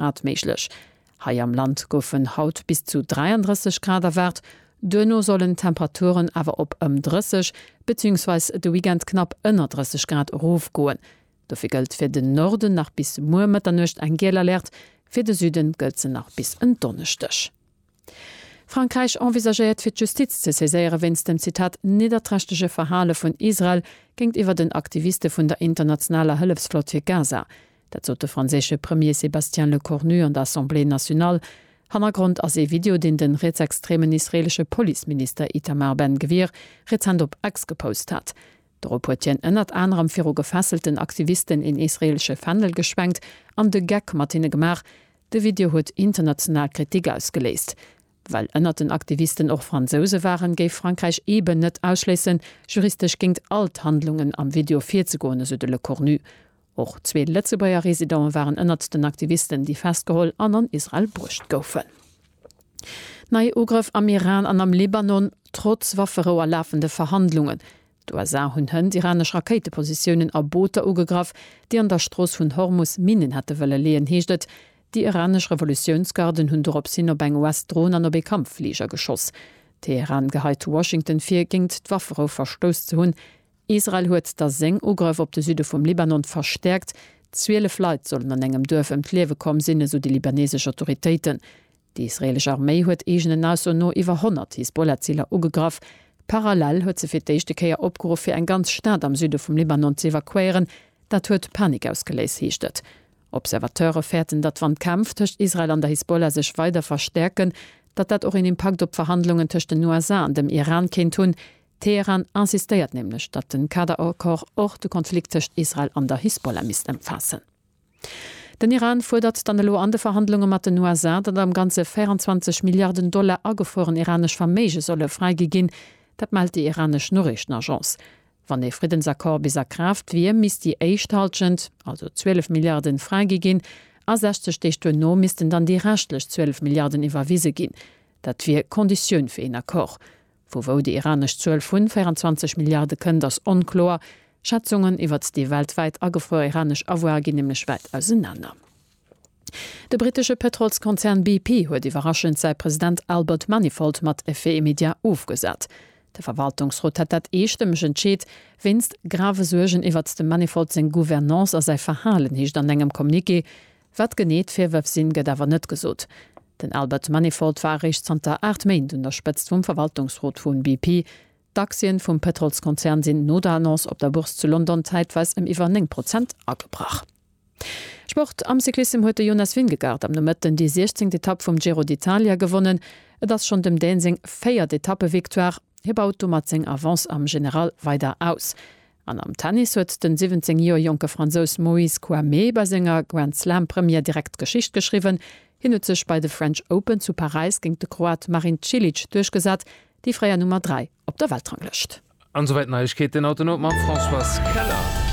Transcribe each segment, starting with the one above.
Grad méiglech. Hei am Land goufen haut bis zu 33 Grad erwaart, duerno sollen d'Temperaturen awer op ëm 30 beziehungsweis de Weekend knapp ënner 30 Grad erofgoen. Dofir gëllt fir den Norden nach bis muer Mëtternuecht eng giel Alerte, fir de Süden gëllt se nach bis en Donneschdeg. Frankräich envisagéiert fir d'Justiz ze saiséiere wéinst dem Zitat nidderträchtege Verhale vun Israel géintiwwer den Aktiviste vun der internationaler Hëllefsflott fir Gaza. Dat sot de franséische Premier Sébastien Lecornu an der Assemblée nationale. Hannergrond ass ee Video, deen de rietsextremen israeelesche Policeminister Itamar Ben Gvir rezent op X gepost hat. Dorop huet hien ënnert anerem viru gefesselten Aktivisten een israeelesche Fändel geschwenkt an de Geck mat hinne gemaach. De Video huet international Kritik ausgeléist. Well ënnert den Aktivisten och Fransouse waren, géif Frankräich eeben net ausschléissen, juristesch géingt all d'Handlungen am Video virzegoen, esou de Lecornu. Och zwee Lëtzebuerger Residente waren ënnert den Aktivisten, déi festgeholl an an Israel bruecht goufen. Nei Ugrëff am Iran an am Libanon, trotz Wafferou a lafende Verhandlungen. D'USA hunn hënt iranesch Rakéitepositiounen a Booter ugegraff, déi an der Strooss vun Hormus Minnen hätte wëlle leeën, heescht et. Déi iranesch Revolutiounsgarden hunn doropshin op eng US-Dron an op ee Kampffliger geschoss. Teheran geheit Washington vir, géingt d'Wafferou verstouss ze hunn. Israel huet da seng Ugrëff op de Süde vum Libanon verstäerkt. Zwielef Leit sollen an engem Duerf ëm d'Liewe komm sinn, esou déi libanesesch Autoritéiten. Déi israeelesch Arméi huet eegenen Ausso no iwwer 100 Hisbollah-Ziler ugegraff. Parallel huet se fir d'éischte Kéier opgeruff, fir eng ganz Stad am Süde vum Libanon ze evakuéieren. Dat huet Panik ausgeléist, heescht et. Observateure fäerten, datt wann d'Kämpf tëscht Israel an der Hisbollah sech weider verstäerken, datt dat och een Impakt op d'Verhandlungen tëscht den USA an dem Iran kéint hunn. Teheran insistéiert nämlech, datt de Kader-Accord och de Konflikt tëscht Israel an der Hisbollah misst ëmfaassen. Den Iran fuerdert dann elo an de Verhandlunge mat den USA, datt am Ganze 24 Milliarden Dollar agefrueren iranesch Verméige solle fräigi ginn. Dat mellt déi iranesch Noriichtenagence. Wann ee Friddensaccord bis a Kraaft wier, misst déi éischt Halschent, also 12 Milliarden, fräigi ginn a 60 Deeg duerno missten dann déi reschtlech 12 Milliarden iwwerwise ginn. Dat wier Konditioun fir een Accord. Vu wou déi iranesch Zuel vu 24 Milliarde kënnt, ass onkloer. Schätzungen iwwert déi weltwäit agefruer iranesch Avoire ginn nämlech wäit ausenaner. De brittesche Pëtrolskonzern BP huet iwwerraschend säi President Albert Manifold mat Effet immédiat ofgesat. De Verwaltungsrot hat dat eestëmmeg entscheet, wéinst grave Suergen iwwert dem Manifold seng Gouvernance a säi Verhalen, heescht an engem Communiqué. Wat genee d'Virwërf sinn, gëtt awer net gesot. Den Albert Manifold war eréischt zanter 8 Méint un der Spëtzt vum Verwaltungsrot vu BP. D'Aktien vum Pëtrolskonzern sinn no der Annonce op der Bourse zu London zäitweis ëm iwwer 9 Prozent agebrach. Sport, Am Cyclissem huet de Jonas Vingegaard am Nomëtten déi 16. Etapp vum Giro d'Italia gewonnen. Et ass schonn dem Dän seng véiert Etappevictoire. Hie baut domat seng Avance am General weider aus. An am Tennis huet den 17 Joer jonke Fransous Moïse Kouamé bei senger Grand Slam Première direkt Geschicht geschriwwen. Hien huet sech bei de French Open zu Paräis géint de Kroat Marin Cilic duerchgesat, déi fréier Nummer 3 op der Weltranglëscht. An esouwäit d'Neiegkeeten haut den Owend mam Françoise Keller.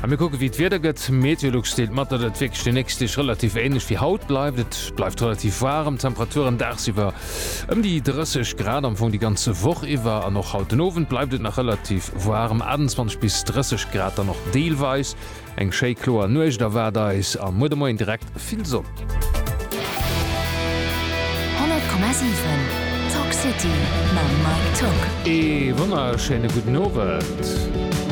A mir kucke wéi d'Wieder gëtt. Meteolux deelt mat, datt et wierklech déi nächst Deeg relativ ähnlech wéi haut bleift. Et bleift relativ waarem, d'Temperaturen daagsiwwer Ëm déi 30 Grad am Fong déi ganze Woch iwwer an och haut den Owend bleift et nach relativ waarm, 28 bis 30 Grad dann och deelweis. Eng schéi kloer Nuecht erwaart eis a muer de Moien direkt vill Sonn. 100,7 Tock City mam Mike Tock. Ee wonnerschéine gudden Owend.